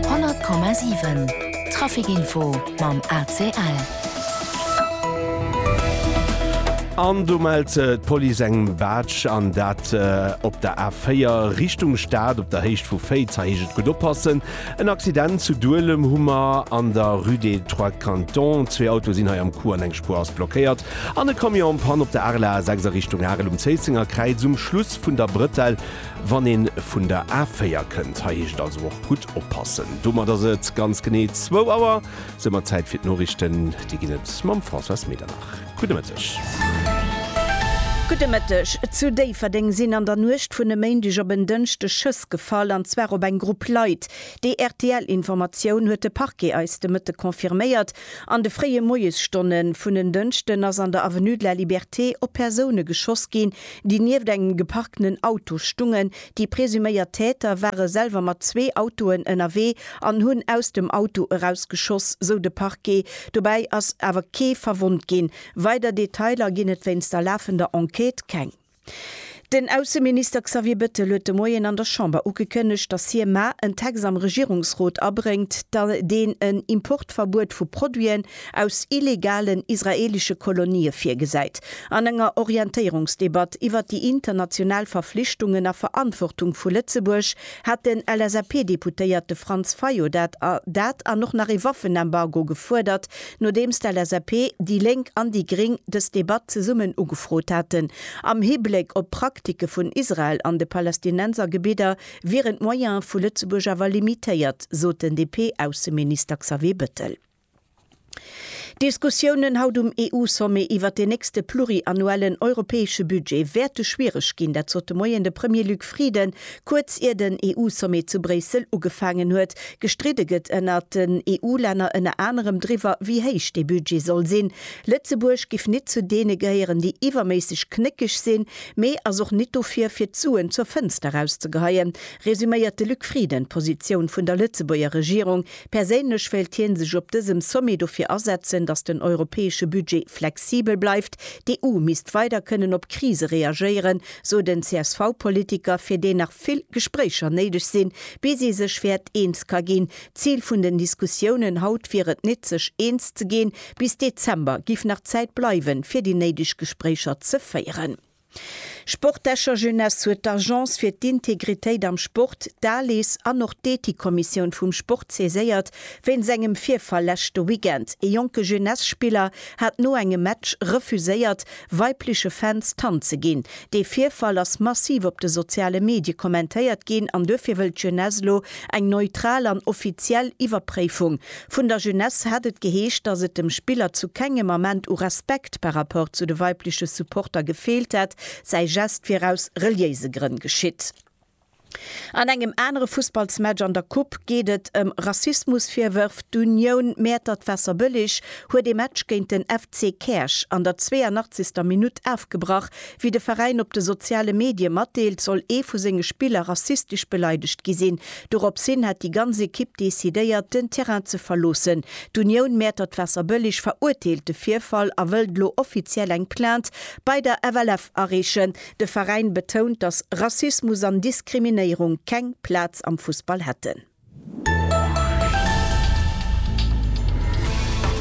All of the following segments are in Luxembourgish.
100,7 Trafic Info mam ACL. An do mellt d'Police eng Baatsch, an dat op der A4 Richtung Stad op der Héicht vu Féiz. Hei heescht et gutt oppassen. En Accident zu Duelem hu mer an der Rue des Trois Cantons. Zwee Autoe sinn hei am Coup an eng Spuer ass blockéiert. An e Camion en Panne op der Arel A6 a Richtung Arel um Zéissenger Kräiz um Schluss vun der Brëtell. Wann een vun der A4 kënnt, hei heescht et also och gutt oppassen. Domat ass et ganz genee zwou Auer, es ëmmer Zäit fir d'Noriichten. Déi ginn et mam Françoise Medernach. Gudde Mëtteg. Gudde Mëtteg. Zu Déifferdeng sinn an der Nuecht vun e Méindeg op en Dënschdeg Schëss gefall, an zwar op eng Grupp Leit. Déi RTL-Informatioun huet de Parquet eis de Mëtte confirméiert. An de fréie Moiesstonne vun en Dënschden ass an der Avenue de la Liberté op Persoune geschoss ginn, déi nieft engem geparkten Auto stungen. Déi presuméiert Täter ware selwer mat zwee Autoen ënnerwee an hunn aus dem Auto eraus geschoss, sou de Parquet. Dobäi ass awer kee verwonnt ginn. Weider Detailer ginn et wéinst der lafender Enquête keng. Den Ausseminister Xavier Bettel huet de Moien an der Chamber ugekënnegt, datt hie mar en Text am Regierungsrot abréngt, deen en Importverbuet vu Produiten, aus illegalen israelische Kolonië virgesäit, an enger Orientéierungsdebatt iwwert déi international Verflichtungen a Verantwortung vu Lëtzebuerg hat den LSAP-Deputéierte Franz Fayot dat a dat an och nach ee Waffenembargo gefuerdert, nodeems d'LSAP, déi Lénk an déi Gring dës Debatt zesummen ugefrot haten. Am Hibléck op d'Praktike vun Israel an de Palästinensergebidder wieren d'Moyene vu Lëtzebuerg awer limitéiert, sot den DP-Ausseminister Xavier Bettel. D'Diskussiounen haut um EU-Sommet iwwert deen nächste pluriannuellen europäesche Budget wäerte schwiereg ginn. Dat sot de Moien de Premier Luc Frieden, kuerz ier den EU-Sommet zu Bréissel ugefaangen huet. Gestridde gëtt ënnert den EU-Länner ënner anerem driwwer, wéi héich dee Budget soll sinn. Lëtzebuerg giff nit zu deene gehéieren, déi iwwerméisseg knéckeg sinn, mee ass och nit dofir, fir d'Suen zur Fënster erauszegeheien, resuméiert de Luc Frieden d'Positioun vun der Lëtzebuerger Regierung, Perséinlech wéilt hien sech op dësem Sommet dofir asetzen, datt den europäesche Budget flexibel bleift. D'EU misst weider kënnen op Krise reagéieren, sot en CSV-Politiker, fir deen nach vill Gespréicher néideg sinn, bis ee sech wäert eens ka ginn. D'Zil vun den Diskussiounen haut wier et net, sech eens ze ginn. Bis Dezember giff nach Zäit bleiwen, fir déi néideg Gespréicher ze féieren. Sport Escher Jeunesse huet d'Agence fir d'Integritéit am Sport, d'ALIS, an och d'Ethikkommissioun vum Sport saiséiert wéinst engem Virfall leschte Weekend. Ee jonke Jeunesse-Spiller hat no engem Match refuséiert, weibleche Fans d'Hand ze ginn. Dee Virfall ass massiv op de soziale Medie kommentéiert ginn an duerfir wëllt d'Jeunesse elo eng neutral an offiziell Iwwerpréifung Vun der Jeunesse hat et geheescht, dass et dem Spiller zu kengem Ament u Respekt par rapport zu de weibleche Supporter gefeelt hätt, säi Gest wier aus reliéise Grënn geschitt. An engem anere Fussballsmatch an der Coupe geet et ëm Rassismusvirwërf. D'Union Mäertert-Waasserbëlleg huet ee Match géint den FC Käerch an der 82. Minutt afgebrach. Wéi de Veräin op de soziale Medie matdeelt, soll ee vu senge Spiller rassistesch beleidegt gi sinn. Dorops hin hätt déi ganz Ekipp decidéiert, den Terrain ze verloossen. D'Unioun Mäertert Waasserbëlleg verurteelt de Virfall a wëllt elo offiziell eng Plainte bei der FLF areechen. De Veräin betount, datt Rassismus an Diskriminéierung keng Plaz am Fussball hätten.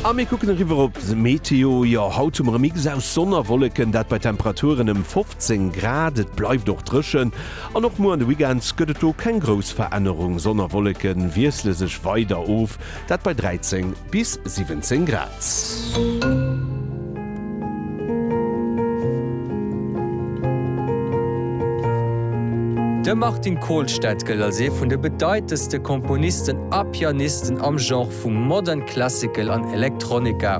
A mir kucken eriwwer op d'Meteo. Jo, haut hu mer e Mix aus Sonn a Wolleken, dat bei Temperaturen ëm 15 Grad. Et bleift och dréchen. An och muer an de Weekend gëtt et do keng grouss Verännerung, Sonn a Wolleke wiessle sech weider of, dat bei 13 bis 17 Grad. De Martin Kolstad gëllt als ee vun de bedeitendste Komponisten a Pianisten am Genre vu Modern Classical an Electronica.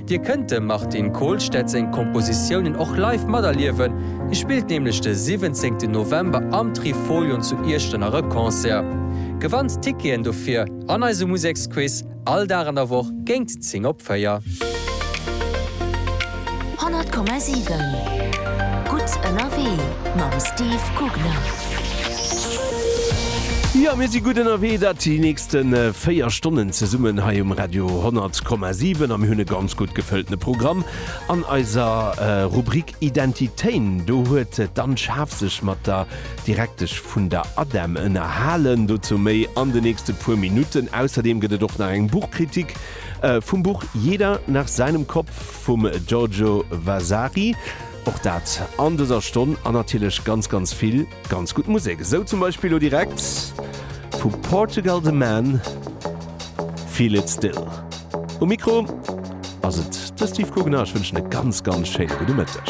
Dir kënnt dem Martin Kohlstedt seng Kompositiounen och live materliewen, hie spillt nämlech de 17 November am Trifolion zu Iechternach e Concert. Gewannt d'Ticketen dofir an eisem Museksquiz, all Dag an der Woch géingt 10 op 4. 100,7 Gutt ënnerwee mam Steve Gugner. Jo, mir si gutt ënnerwee, dat si. D'leschte 4 Stonnen zesummen hei um Radio 100,7 a mir hunn e ganz gutt gefëlltene Programm. An eiser Rubrik Identitéin, do huet d'Anne Schaaf sech mat der Direktesch vun der ADEM ënnerhalen. Dozou méi an de nächste puer Minutten. Ausserdeem gëtt et och nach eng Buchkritik vum Buch Jeder nach seinem Kopf vum Giorgio Vasari. Och dat an dëser Stonn. An natierlech ganz, ganz vill. Ganz gutt Musek, esou zum Beispill lo direkt vu Portugal de Man, Feel it still. Um Mikro ass et de Steve Guggenau, ech wënschen e ganz ganz schéine gudde Mëtteg.